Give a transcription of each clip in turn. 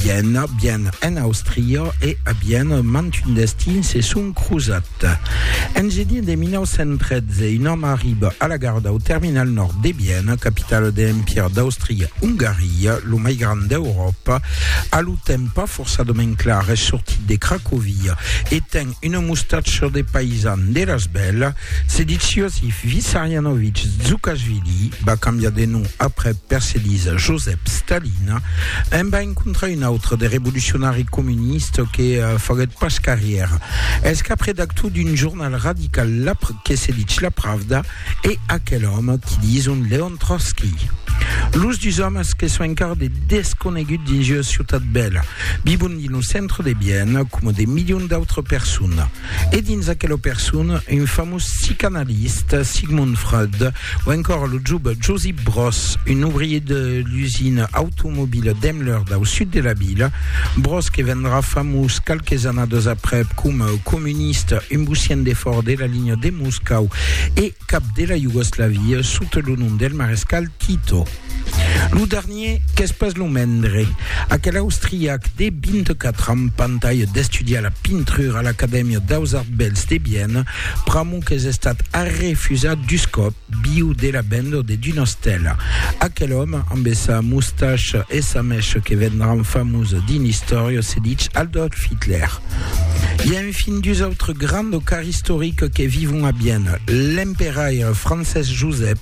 Viena, Viena en Austria e a Viena mantun destin se son crosat. En genier de 1913, un òme arriba a la gara dau terminal nòrd de Viena, capitala de l'Empire d'Austria-Ongaria, lo mai grand d'Euròpa, a lo temps pas forçadament clar, es sortit de Cracovia e ten Una mostacha de paisan de Rasbèl, Sediciosi Vissarianovic Zukashvili, va cambiar de nom après perselisa Josep Stalin, en va encontrar un autre de revolucionari comuniste que faguèt pas carrièra. Es cap redactor d'un jornal radical que se dich La Pravda, e aquel òme qui dison Leon Trotsky. Los dus òmes que son encara de desconegut dins ua ciutat bèla, vivon dins lo centre de Vienne coma de milions d'autres personnes. E dins aquela persona, un famós psicanaliste, Sigmund Freud, o encora lo jove Josip Broz, un ouvrier de l'usina automobila Daimler dau sud de la vila, Broz que vendrà famós qualques annadas aprèp coma comuniste, un bocian de fòra de la linha de Moscòu. Moscau e cap de la Iugoslavia sota lo nom del marescal Tito. Lo dernier qu'es pas lo mendre, aquel austriac de 24 ans pantalha d'estudiar la pintrura a l'Acadèmia daus Arts Bèls de Viena, pr'amor qu'es estat arrefusat dus còp viu de la vendor de Dunastèla. Aquel òme amb sa mustacha e sa mècha que vendràn famós dins l'istòria se ditz Adolf Hitler. E fin dus autres grands docars istoriques que vivon a Vienne, l'emperaire Francés Josep,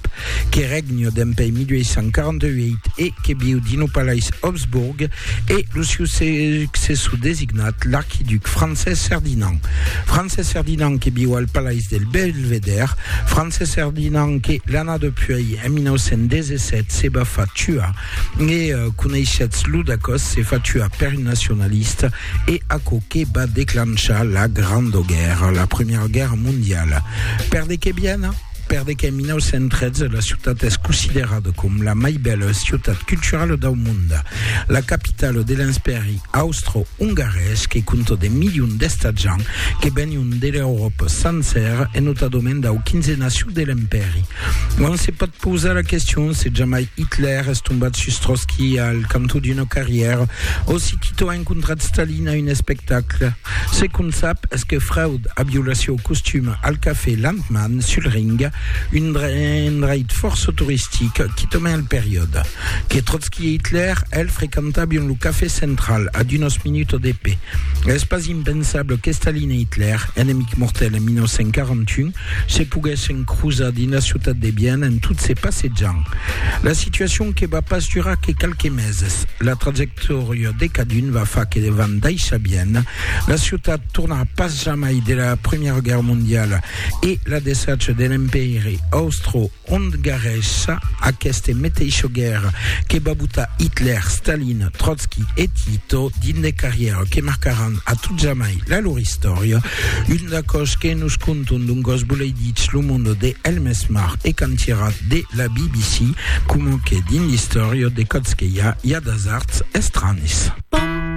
que règne dempuèi 1848 e que viu dins lo palais Habsburg, e lo siu successor designat, l'archiduc Francés Ferdinand. Francés Ferdinand que viu al palais del Belvedère, Francés Ferdinand que, l'anada puèi, en 1917, se va far tuar E coneishetz lo dacòs se fatua per un nacionalista e aquò que va declanchar la Granda Guèrra, la Primièra Guèrra Mondiala. Per de qué Viena? Per de qué en 1913 la ciutat es considerada com la mai bèla ciutat culturala dau monde, la capitala de l'Enspèri austro-ongarés que compta de milions d'estatjants que venion de l'Euròpa sancèra e notadament dau 15 naciu de l'Empèri. Non se pòt pausar la question se jamai Hitler es tombat sus Trotski al cantó d'una carrièra o si Tito a encontrat Stalin a un espectacle. Ce qu'on sap es que Freud a violat sieu costum al cafè Landmann sul Ring, un endreit fòrça toristic quitament al periòde, que Trotski e Hitler, el, frequentabion lo cafè central a d'unas minutas de pè. Es pas impensable que Stalin e Hitler, enemics mortèls en 1941, Se poguèssen crosar dins la ciutat de Viena en tot se passejant. La situacion que va pas durar que qualques meses. La trajectòria de cadun va far que van daissar Viena. La ciutat tornarà pas jamai de la Primièra Guèrra Mondiala e la desacha de l'Empèiri Austro ont garrèssa aqueste meteisho guèrra que va botar Hitler, Stalin, Trotsky e Tito dins de carrièra que marcaràn a tot jamai la lor istòria, un d'aquò's que nos conton d'un gòs boleiditz lo monde de Elmes Marr e cantièrat de la BBC, coma que dins l'istòria de Còtzqueia i a d'asards estranis.